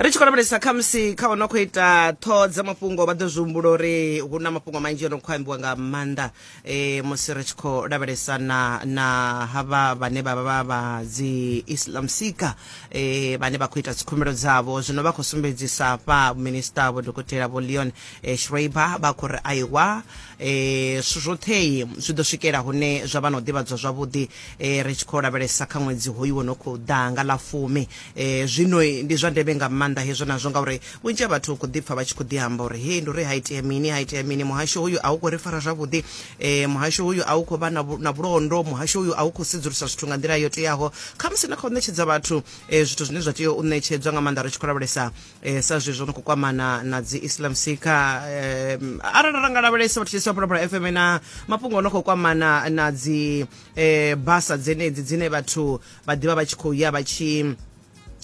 ri tshi khou lavhelesa khamusi kha ono khou ita ṱhoho dza mafhungo vha ḓo zwi humbula uri hu na mafhungo manzhi ono khou ambiwa nga maanḓa um musi ri tshi khou lavhelesa na na havha vhane vha vha vha vha dzi islam sika um vhane vha khou ita dzikhumbelo dzavho zwino vha khou sumbedzisa hafha minista vho dokotela vho leon eh, schreiber vha khou ri aiwa um zwithu zwothei zwi ḓo swikela hune zwa vha na u ḓivhadzwa zwavhuḓi e, ri tshi khou lavhelesa kha ṅwedzi hoyu wo no khou ḓa nga ḽa fumi e, zwino ndi zwa ndeme nga maanḓa hezwo nazwo ngauri vhunzhi ha vhathu khou ḓipfa vha tshi khou ḓi amba uri hei ndi uri ha itea mini ha itea mini muhasho hoyu a u khou ri fara zwavhuḓi e, muhasho hoyu a u khou vha na vhulondo muhasho hoyu a u khou sedzulusa zwithu nga nḓila yo teaho khamusi na kha u ṋetshedza vhathu e, zwithu zwine zwa tea u ṋetshedzwa nga maanḓa ri tshi khou lavhelesa eh, sa zwe zwo no khou kwamana na dzi islam seeker eh, arali ra nga lavhelesa vhathu tshisa phalaphala fm na mafhungo o no khou kwamana na dzi eh, basa dzenedzi dzine vhathu vha ḓivha vha tshi khou ya vha tshi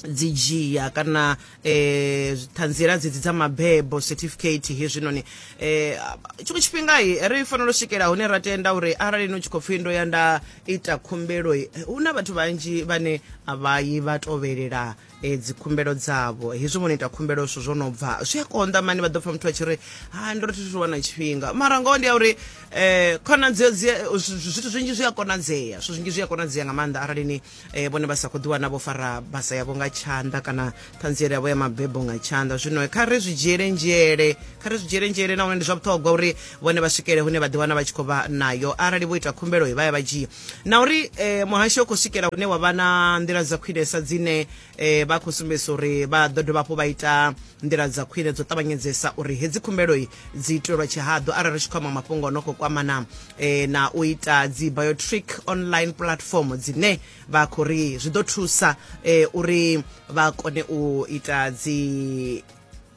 dzi dzhia kana eh ṱhanziela dzedzi dza mabebo certificate hezwinoni eh tshiṅwe tshifhinga ri fanela u swikela hune ra tenda uri arali no tshi khou pfhi ndo ya nda ita khumbelo hu na vhathu vhanzhi vhane a vha yi vha tovhelela e, dzi khumbelo dzavho hezwi vho no ita khumbelo zwithu zwo no bva zwi a konḓa mani vha ḓo pfa muthu a tshi ri ha ndo ri thi thu wana tshifhinga mara ngoho ndi ya uri um khonadzeo dzi a- zwi- zwi- zwithu zwinzhi zwi a konadzea zwithu zwinzhi zwi a konadzea nga maanḓa arali ni um vhone vha sa khou ḓiwana vho fara basa yavho nga tshanḓa kana ṱhanziela yavho ya mabebo nga tshanḓa zwino kha ri zwi dzhiele nzhele kha ri zwi dzhiele nzhele nahone ndi zwa vhuṱhogwa uri vhone vha swikele hune vha ḓiwana vha tshi khou vha nayo arali vho ita khumbelo vha ya vha dzhia na uri eh, muhasho u khou swikela hune wa vha na nḓila dza khwinesa dzine eh, vha khou sumbedzisa uri vha ḓo dovha hafhu vha ita nḓila dza khwine dzo ṱavhanyedzesa uri hedzi khumbeloi dzi itelwa tshihaḓu arali ri tshi khou amba mafhungo o no khou kwamana eh, na u ita dzi biotric online platform dzine vha khou ri zwi ḓo thusa eh, uri vha kone u ita dzi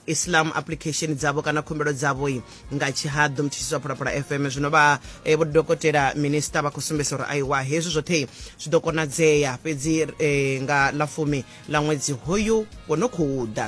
islam application dzavho kana khumbelo dzavho nga tshihaḓu mthutshisi wa phalaphala fm zwino vha eh, vho dokotela minista vha khou sumbedzisa uri aiwa hezwi zwoṱhe zwi ḓo konadzea fhedzi eh, nga ḽa fumi ḽa ṅwedzi hoyu wo no khou ḓa